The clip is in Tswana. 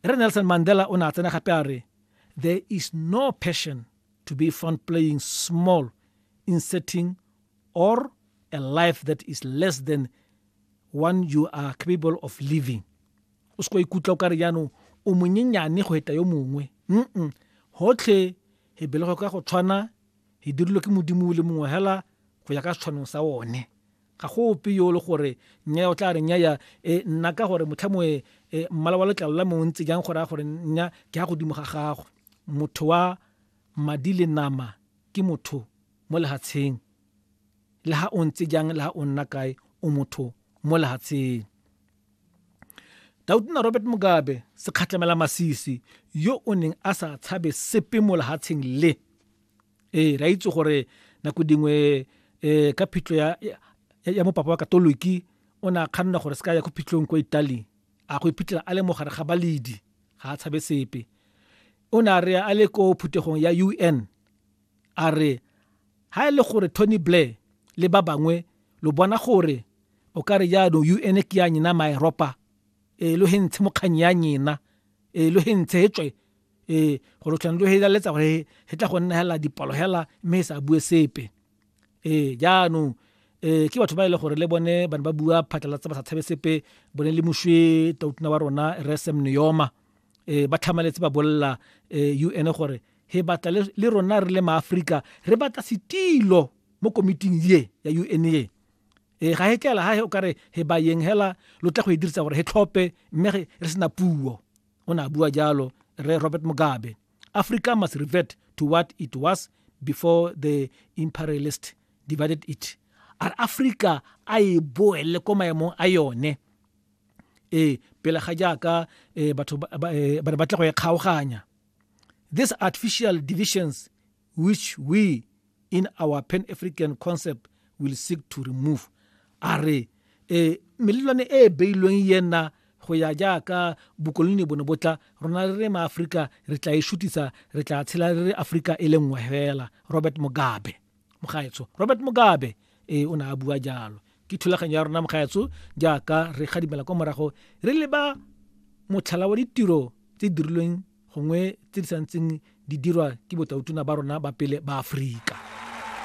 Re Nelson Mandela o ne a tsena gape a re, There is no passion to be found playing small in setting or a life that is less than one you are capable of living o se ko ikutlwa o ka re jaanong o monyenyane go eta yo mongwe mm gotlhe e belego ka go tshwana e dirilwe ke modimo le mongwe hela go ya ka setshwanong sa one Ga go ope yo o le gore nnyaya o tla re nnyaya, e, nna ka gore motlhamoe e, mmala wa letlalo la me o ntse jang go raya gore nnya ke a godimo ga gago. Motho wa madi le nama ke motho mo lehatsheng. Le ha o ntse jang, le ha o nna kae, o motho mo lehatsheng. Tautona Robert Mugabe, sekgatlamela masisi, yo o neng a sa tshabe sepe mo lehatsheng le, ee ra itse gore nako dingwe um ka phitlho ya, ya mopapa wa katoliki o ne a kganna gore se ka ya ko phitlhong kwa italy a go iphitlhela a le mogare ga baledi ga a tshabe sepe o ne a re a le ko phuthegong ya u n a re ga e le gore tony blair le ba bangwe lo bona gore o ka re jaanong u n ke ya nyena maeropa e lo he ntshe mokganyi ya nyena e lo he ntshe e tswe ee gore tlhang lo helaletsa gore he tla go nna hela dipalo hela mme e sa bue sepe ee jaanong um ke batho ba e le gore le bone bane ba bua phatlalatsa ba sa tshabe sepe bone le mošwe tautuna wa rona re sem neoma um ba tlhamaletse ba bolela um u n gore he batla le rona re le maaforika re batla setilo mo komiting ye ya u n ye e ga he tlela ga he o kare he bayeng hela lo tla go e dirisa gore he tlhope mme re sena puo o ne a bua jalo re robert mugabe africa must revert to what it was before the imperialist divided it a re africa a e boele ko maemong a yone ee pele ga jaaka eh, batho eh, ba ne ba tla go e kgaoganya these artificial divisions which we in our pan african concept will seek to remove a re e melelwane e e beilweng yena go ya jaaka bokoloni bone botla rona re re maaforika re tla e shutisa re tla tshela re re aforika e le nngwe fela robert mugabe mogaetsho robert mugabe e o ne a bua jalo ke thulaganyo ya rona mogaetsho jaaka re gadimela kwa morago re leba motlhala wa ditiro tse dirilweng gongwe tse di santseng di dirwa ke botautona ba rona ba pele ba Aforika.